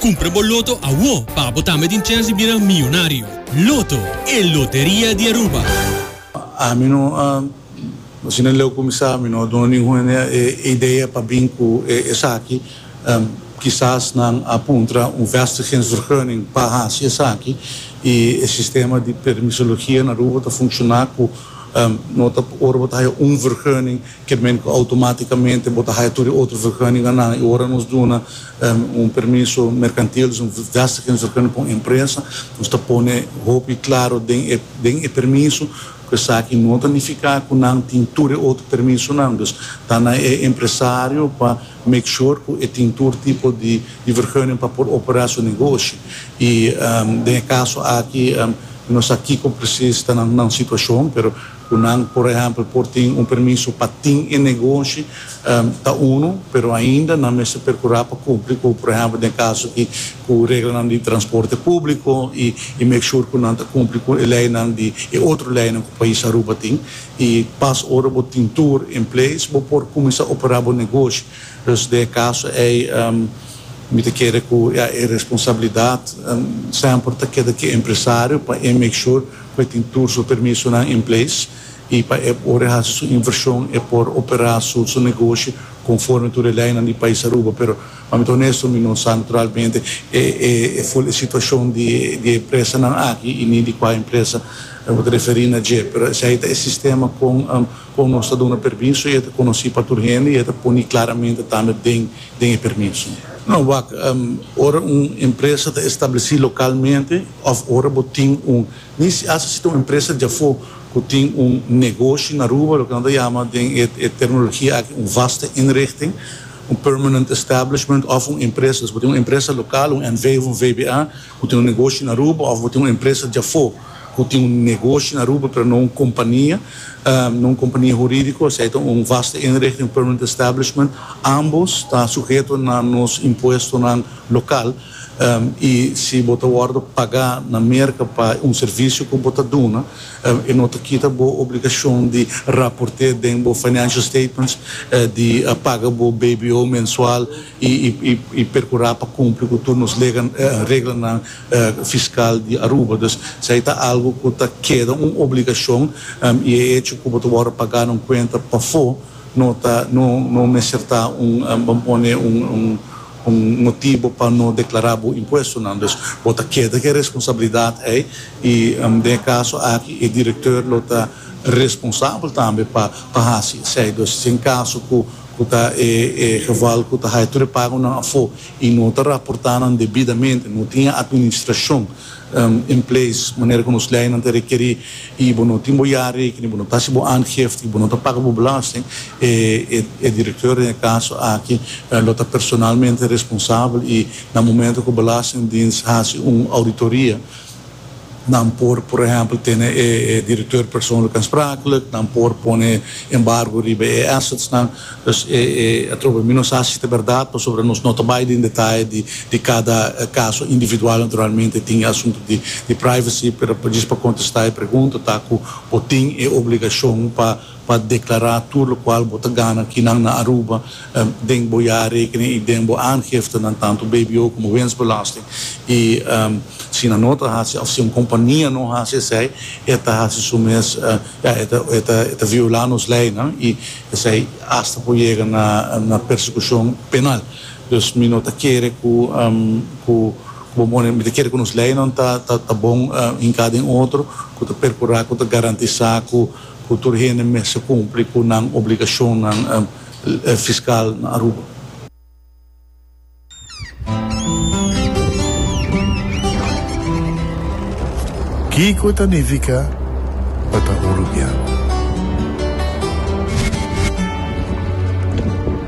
Cumpra bo Loto awo pa bo tambe tin chance di bira miyonario. Loto, e loteria di Aruba. Ami no a, asina el leu cuminsa, mi no a duna ningun e idea pa bin cu e esaki. Kisas nan a puntra un vestigingsvergunning pa haci esaki y e sistema di permisologia na Aruba ta funciona cu no ta, ora bo ta haya un vergunning Ke men ku outomatikamente bo ta haya tur e otro vergunningannan, i ora nos duna un permiso merkantil, dus nos gasta ken vergunning pa un empresa, nos ta pone hopi klaro den e den e permiso ku esaki no ta nifiká ku nan tin tur e otro permisonan. Dus ta na e empresario pa make sure ku e tin tur tipo di di vergunning pa por operá su negoshi. I den e kaso aki mi no sa kiko presis ta nan nan situashon, pero Cu nan, por ehempel, por tin un permiso pa tin e negoshi, ta unu, pero ainda nan mester percura pa cumpli cu, por ehempel, den e caso aki, cu reglanan di transporte publico y y make sure cu nan ta cumpli cu e leynan di e otro leynan cu pais Aruba tin. Y pas ora bo tin tur in place, bo por cuminsa opera bo negoshi. Dus den e caso ey, mi ta kere cu ya e responsabilidad semper ta keda cu e empresario pa e make sure, Bo tin tur su permisonan en place y pa e ora e haci su inversion e por opera su negoshi conforme tur e leynan di pais Aruba. Pero pa mi ta honesto mi no sa naturalmente e full e situacion di e empresanan aki y ni di cua empresa bo ta referi na dje. Pero esey ta e sistema con Kon nos ta duna permiso i e ta konosí pa tur hende i e ta poni klaramente tambe den den e permiso? No, wak, ora un empresa ta establesí lokalmente òf ora bo tin un, ni si asta si ta un empresa di afó ku tin un negoshi na Aruba, loke nan ta yama den e e terminologia aki un vaste inrichting, un permanent establishment òf un empresa. Pues bo tin un empresa lokal, un NV òf un VBA. Bo tin un negoshi na Aruba of bo tin un empresa di afo ku tin un negoshi na Aruba pero no un kompania, no un kompania huridiko, esei ta un vaste inrichting, un permanent establishment, ambos ta suheto na nos impuestonan lokal i si bo ta wòrdu pagá na Merka pa un servisio ku bo ta duna e no ta kita bo obligashon di raport'é den bo financial statements di paga bo BBO mensual y percura pa cumpli cu tur nos reglanan fiscal di Aruba. Dus esai ta algo cu ta keda un obligacion y e hecho cu bo ta wordo paga nan cuenta pafo no ta no mester ta un bo pone un motibo pa no declara bo impuestonan. Dus bo ta keda cu e responsabilidad ei y den e caso aki e director lo ta responsabel tambe pa haci esai. Dus si en caso cu ku ta e geval ku ta haya tur e pagonan afó i no ta raportá nan debidamente, no tin e atministrashon in place manera ku nos leinan ta rekerí i bo no tin bo jaareken i bo no ta hasi bo aangifte i bo no ta paga bo belasting, e direkteur den e kaso aki lo ta personalmente responsabel i na momento ku belastingdiens hasi un ouditoria, Nan por, por ehempel, tene e directeur persoonlijk aansprakelijk, nan por pone embargo riba e assetsnan. Dus, atrobe mi no sa si ta berdad, pasobra nos no ta bai den detaye di cada caso individual. Naturalmente tin e asunto di privacy, pero djis pa contesta e pregunta ta cu bo tin e obligacion pa pa deklará tur lokual bo ta gana kinan na Aruba den bo jaarrekening i den bo aangiftenan, tantu bbo komo winstbelasting. I si nan no ta hasi òf si un kompania no hasi esei, e ta hasi su mes, ja, e ta violá nos leinan i esei asta por yega na persekushon penal. Dus mi no ta kere ku ku bo pone, mi ta kere ku nos leinan ta bon hinká den otro ku ta perkurá ku ta garantisá ku, Ku tur hende mester kumpli ku nan obligashonnan fiskal na Aruba. Kiko ta nifiká pa ta urubiano?